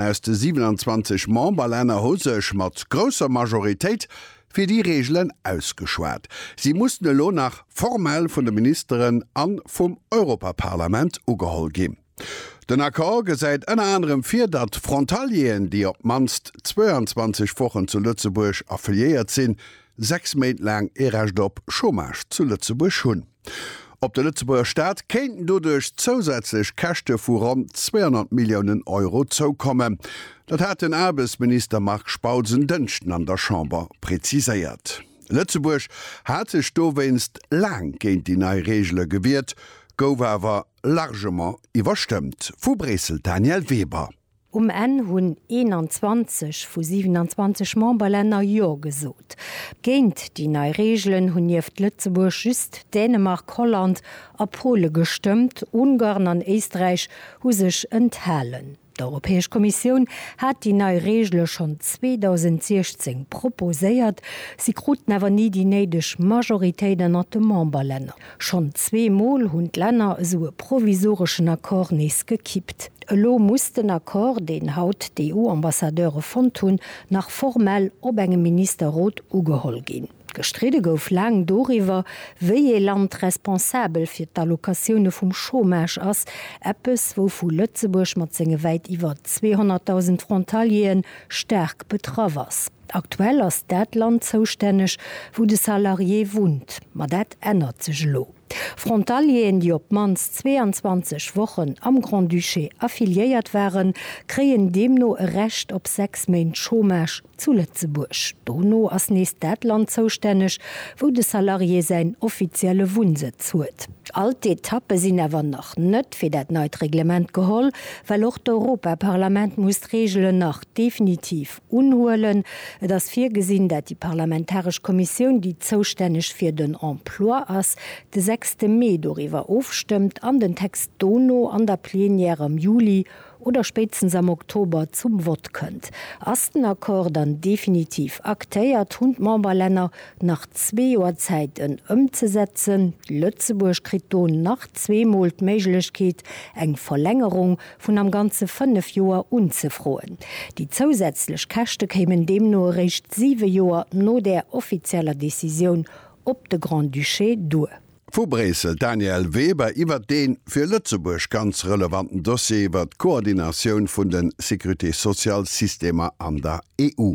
aus de 27 Memberlänner hu sech mat grousser Majoritéit fir déi Reegelen ausgeschwat. Si mussen elo nach formell vun de Ministeren a vum Europaparlament ugeholl ginn. Den Accord gesäit ënner anerem vir, datt Frontalieren, déi op d'mannst 22 Wochen zu Lëtzebuerg affiliéiert sinn, sechs Méint laang ee Recht op Chômage zu Lëtzebuerg hunn. Op de Lëtzebuerger Staat kéinten doduerch zousätzlech Käschte vu ronn 200 Milliounen Euro zoukommen. Dat hat den Aarbechtsminister Marc Spautz en Dënschden an der Chamber preziséiert. Lëtzebuerg hat sech dowéinst laang géint déi nei Reegele gewiert, gouf awer largement iwwerstëmmt. Vu Bréissel d'Danièle Weber. Um Enn hunn 21 vu 27 Memberlänner Jo gesot. Géint déi nei Reegelen hunn nieft Lëtzebuerg just Dänemark, Holland a Pole gestëmmt. Ungarn an Éisträich hu sech enthalen. D'Europäesch Kommissioun hat déi nei Reegele schonn 2016 proposéiert. Si kruten awer ni déi néideg Majoritéit ënnert de Memberlänner. Schonn zwee Mol hunn d'Länner esou e provisoreschen Accord nees gekippt. Elo muss den Accord, deen haut d'EU-Ambassadeure fonnt hunn, nach formell op engem Ministerrot ugeholl ginn. Gestridde gouf laang doriwwer, wéi ee Land responsabel fir d'Allocatioune vum Chômage ass, eppes wouvu Lëtzebuerg mat senge wäit iwwer 200.000 Frontalieren staark betraff ass. Aktuell ass dat Land zoustänneg, wou de Salarié wunnt, ma dat ännert sech elo. Frontalieren, déi op d'mannst 22 Wochen am Grand-Duché affiliéiert waren, kréien deemno e Recht op sechs Méint Chômage zu Lëtzebuerg. Dono ass nees dat Land zoustänneg, wou de Salarié säin offizielle Wunnsëtz huet. All d'Etappe sinn awer nach net fir dat neit Reglement geholl, well och d'Europaparlament muss d'Reegelen nach definitiv Unhuelen. Et ass virgesinn, dat déi parlamentaresch Kommissioun, déi zoustänneg fir den Emploi ass, de sechste Mee doriwwer ofstëmmt an den Text dono an der Plenière am Juli oder spéitstens am Oktober zum Vott kënnt. Ass den Accord dann definitiv aktéiert, hunn d'Memberlänner nach zwee Joer Zäit, en ëmzesetzen. Lëtzebuerg kritt do nach zweemol d'Méiglechkeet, eng Verlängerung vun am Ganze fënnef Joer unzefroen. Déi zousätzlech Käschte kéimen deemno eréischt siwe Joer no där offizieller Decisioun op de Grand-Duché duer. Vu Bréissel, Danièle Weber iwwert dee fir Lëtzebuerg ganz relevanten Dossier iwwert d'Koordinatioun vun de Sécurité-sociale-Systemer an der EU.